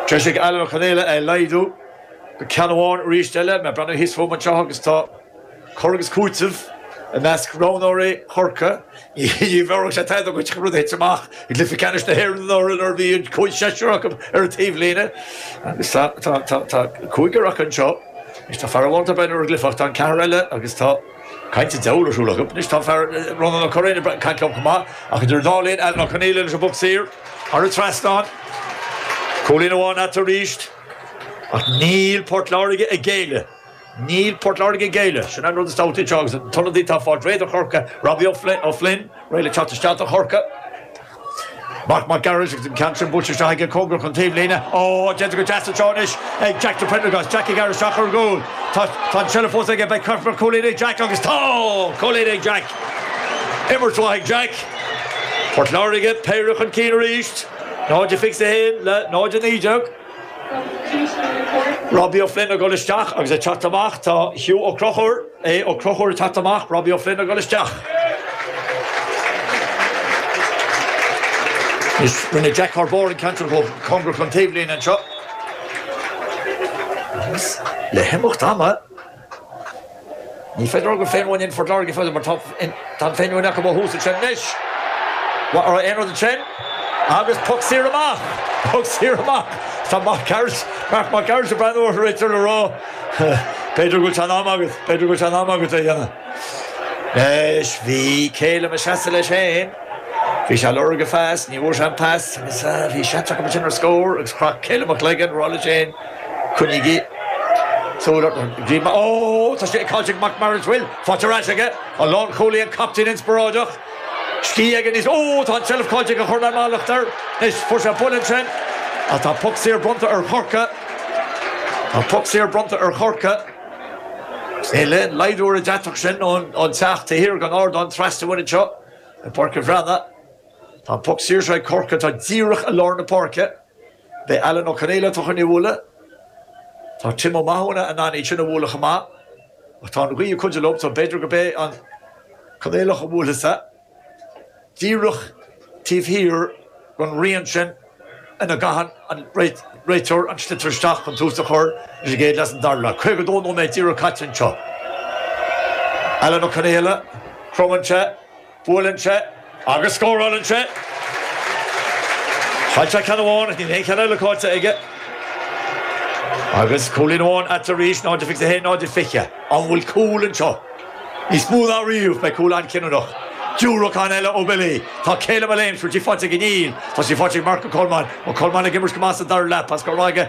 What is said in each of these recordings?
Treisigh Alan Ó Conaola é a laghdú go ceann amháin arís eile. Mé breathnú thíos fúm anseo agus tá cur agus cúiteamh i measc roghnóirí Chorcaí. Ní bhéarfadh sé tada dhuit an rud a thit amach i gcluiche ceannais na hÉireann anuraidh nuair a bhí an cúigear seisear acu ar an taobhlíne agus tá cúigear acu anseo. Anois tá fear amháin ag breathnú ar an gcluiche ach tá an ceathrar eile agus tá. Caint an diabhail ar siúl acu. Anois tá fear Ronán Ó Curraoin ag caint leo chomh maith, ach idir an dá linn, Alan Ó Conaola leis an bpoc saor thar an trasnán, cúilín amháin atá ann arís, ach níl Port Láirge ag géilleadh. Níl Port Láirge ag géilleadh. Sin é an rud is tábhachtaí anseo agus an t-ionadaí atá ag fáil réidh do Chorcaigh, Robbie O'Flynn, réidh le teacht isteach do Chorcaigh. Mark Mac Gearailt agus an ceann sin buailte isteach aige cóngarach don taobhlíne. Ó, déanta go deas anseo anois ag Jack de Priondragás. Jack ag déanamh isteach ar an gcúl. Tá an tseilbh fós aige, beidh cúilín ag Jack agus tá! Cúilín ag Jack! Imirt mhaith ag Jack. Port Láirge, péire chun cinn arís, 0 21 le 0 19. Robbie O'Flynn ag dhul isteach agus ag teacht amach, tá Hugh Ó Crochúir. Aodh Ó Crochúir ag teacht amach, Robbie Ó Floinn ag dul isteach. Rinne Jack Thar bord an ceann sin chomh cóngarach don taobhlíne anseo agus le himeacht ama ní féidir a rá gur féin-mhuinín Phort Láirge a bhí fós acu mar tá Tá an fhéinmhuinín acu ó thús ansin anois. Mhair aon rud ansin agus poc saor amach, poc saor amach. Tá Mark Gearailt, Mark Mac Gearailt ag breathnú orthu réidh le rá, b'fhéidir go bhfuil sé in am agat, b'fhéidir go bhfuil sé in am agat é a dhéanamh. Anois bhí Calum ag seasamh leis féin, bhí sé ag lorg an phas, ní bhfuair sé an pas agus bhí seans acu ansin ar scór agus chroith Calum a chloigeann ag rá leis féin, coinnígí súil orthu, bhí, ó, tá sé ag caint ag Mark Mac Gearailt, bhuel, Faic ar ais aige, a lán chulaith an captaen inspioráideach. Scíth aige níos, Ó, tá an tseilbh caillte go chur le mallacht air. Anois, fuair sé buille ansin ach tá poc saor bronnta ar Chorcaigh. Tá poc saor bronnta ar Chorcaigh. Níl aon laghdú ar an deatach sin ón teach taobh thiar den ardán trasna uainn anseo i bPáirc an Bhreatnaigh. Tá an poc saor seo ag Corcaigh, atá díreach i lár na páirce. Beidh Alan Ó Conaola ag teacht len í a bhualadh. Tá Tim Ó Mathúna in ann iad sin a bhualadh chomh maith. Tá an ghaoth ag cuidiú leo so b'fhéidir gurb é an Conaolach a bhuailfeas é díreach taobh thiar den rian sin ina gcaitheann an réiteoir an sliotar isteach chun tús a chur leis an gcéad leath is an dara leath. 52 nóiméad díreach caite anseo. Alan Ó Conaola, cromann sé Buaileann sé agus scórálann sé. Chaill sé ceann amháin ach níl aon cheann eile caillte aige. Agus cúilín amháin eatarthu arís, 0-21, 0-20. An bhfuil cúl anseo? Níos mó ná riamh, beidh cúl an-chinniúnach. Diúracán eile ó Billy. Tá Calum ag léimt, an bhfuil sí faighte aige? Níl, tá sí faighte ag Marc Ó Colmáin. Ó Colmáin ag imirt go maith sa dara leath, pas go Ráige.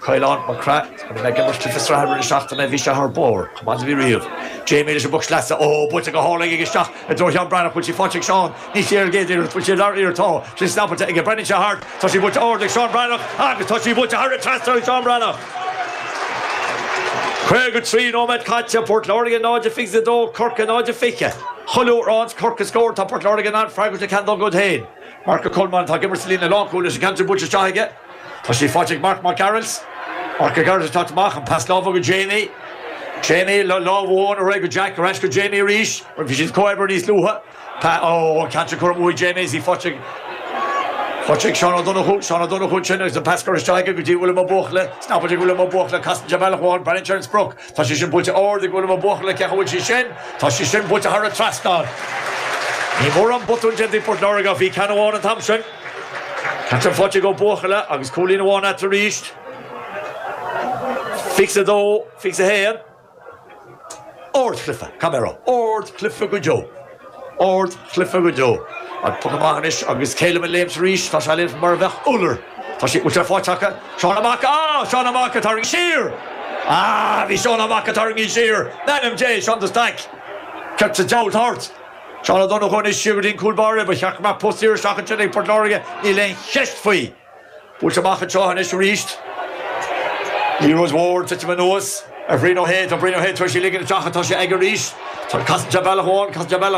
Caolán Mac Craith, An raibh mé ag imirt sa sraith roinnt seachtaine? Bhí sé thar barr, chomh maith is a bhí riamh. Jamie leis an bpoc sleasa, Ó, buailte go hard ag ag isteach i dtreo Sheáin Breathnach, bhfuil sí faighte ag Seán Ní Chéirgéidíreacht bhuail sí lear iar Tá sí snapaite aige breathnaíonn sé thart tá sí buailte ard ag Seán Breathnach agus tá sí buailte thar an trasnán ag Seán Breathnach. 53 nóiméad caite, Port Láirge 0-22 Corcaigh 0-20. Chuile uair a fhaigheas Corcaigh scór tá Port Láirge in ann freagairt le ceann dá gcuid féin. Marc Ó Colmáin atá ag imirt sa líne lánchúil leis an gceann atá buailte isteach aige. Tá sí faighte ag Marc Mac Gearailt. Marc Mac Gearailt ag teacht amach, an pas láimhe go Jamie. Jamie le lámh amháin, ar aghaidh go Jack, ar ais go Jamie arís, mar bhí siad ag comhoibriú níos luaithe. Pas, oh, an ceann sin curtha amú ag Jamie is í faighte ag, faighte ag Seán Ó Donnchú. Seán Ó Donnchú ansin agus an pas curtha isteach aige go dtí Uilliam Ó Buachalla. Snapaite ag Uilliam Ó Buachalla, casann sé bealach amháin, breathnaíonn sé ar an sprioc. Tá sé sin buailte ard ag Uilliam Ó Buachalla ach an bhfuil sí sin. Tá sí sin buailte thar an trasnán. Níl mórán botún déanta ag Port Láirge ach bhí ceann amháin an t-am sin. Ceann faighte ag Ó Buachalla agus cúilín amháin eatarthu arís. 22, 21. Ard Chlife, Camera, Ard Chlife go deo. Ard Chlife go deo. An poc amach anois agus Calum ag léimt arís. Tá sé ag léimt mar a bheadh iolar. Tá sé, bhfuil sé faighte acu? Seán Ó Maca! Á! Seán Ó Maca tarraingthe siar! Á! Bhí Seán Ó Maca tarraingthe siar! In ainm Dé! Seán de Staic! Céard sa diabhal atá ort! Seán Ó Donnchú anois siar go dtí an cúl báire. Ba cheart go mbeadh poc saor isteach ansin ag Port Láirge, níl aon cheist faoi. Buailte amach anseo anois arís. Liathróid mhór ag titim anuas ar Bhrian Ó hAodha. Tá Brian Ó hAodha tar éis í ligean isteach ach tá sé aige arís. Tá an casann sé bealach amháin, casann sé bealach.